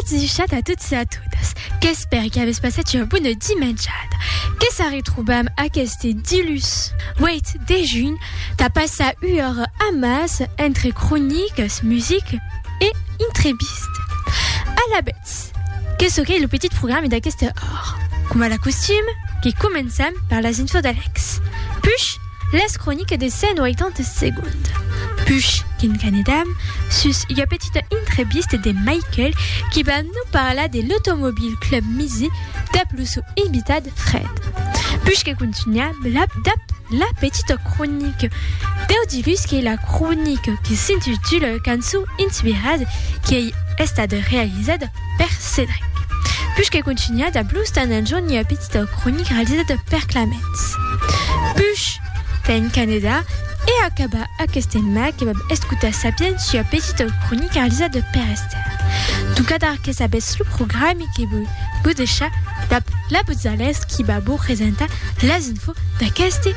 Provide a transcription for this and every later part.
Adishat a tots e a totas, qu'espèri qu'avètz passat ua bona dimenjada, que se retrobam aqueste dilhus 8 de junh tà passar ua ora amàs entre cronicas, musica e intrevistas. Alavetz, que çò qu'ei lo petit programe d'aquesta ora? Coma la costum, que començam per las infos d'Alex, push! Las croniques de 180 segonds. Push qu'en Canadam, sus ua petita intrevista de Michael qui va nou parlar de l'Automobile Club Musée dab lo sou invitat Fred. Push que contunham lab dab la petita cronique. Deu divus qu'ei la cronique qui s'intitula Cançons inspirades qui ei estada realizada per Cedric. Push que contunha dab lo stand en jorn ua petita. Esta cronica realizada per Claments Puch tà en Canadà e acaba aqueste mai que vam escotar Sapiens sua petita cronica realizada per Esther Tucadar que sabètz lo programi que vòi vos deishar dab la Botzalas qui va vos presentar las infos d'aqueste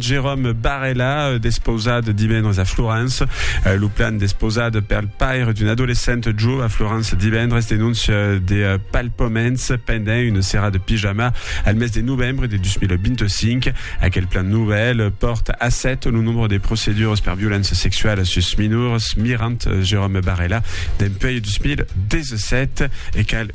Jérôme Barella, despausat divendres a Florence. Lo plan despausat pel paire d'un adolescent jo a Florence divendres denóncia de palpaments pendent una sera de pijama al mes de novembre de 2025. Aquel plan novèl pòrta a 7 lo nombre de procedures per violéncia sexuala sus minors, mirant Jérôme Barella dempuèi 2017 e cal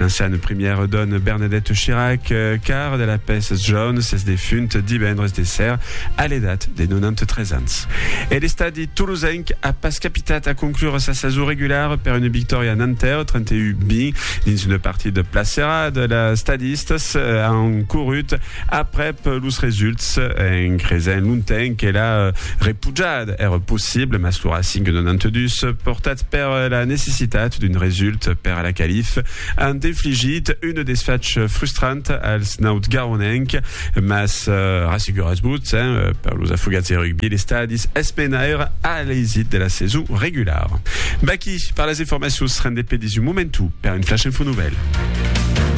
L'anciana primièra dòna Bernadette Chirac, car de la pes John s'es defunt divendres de ser a l'edat de 93 ans. E l'estadi tolosenc a pas capitat a conclure sa sason regulara per una victòria a Nanterre, 31-20, dins una partida placerada. Les estadistas an corrut Aprèp los results, en cresent lontenc que la repujada èra possible, mas lo Racing 92, portat per la necessitat d'un result per a la qualif, an infligit un desfach frustrant als nautgaronenc, mas rasseguratz-vos, per los afogats de rugbi l'estadi es menaire a l'eisit de la saison regulara. Vaquí per las informacions, rendez-pe dins un momentu per un Flash Info Nouvèl.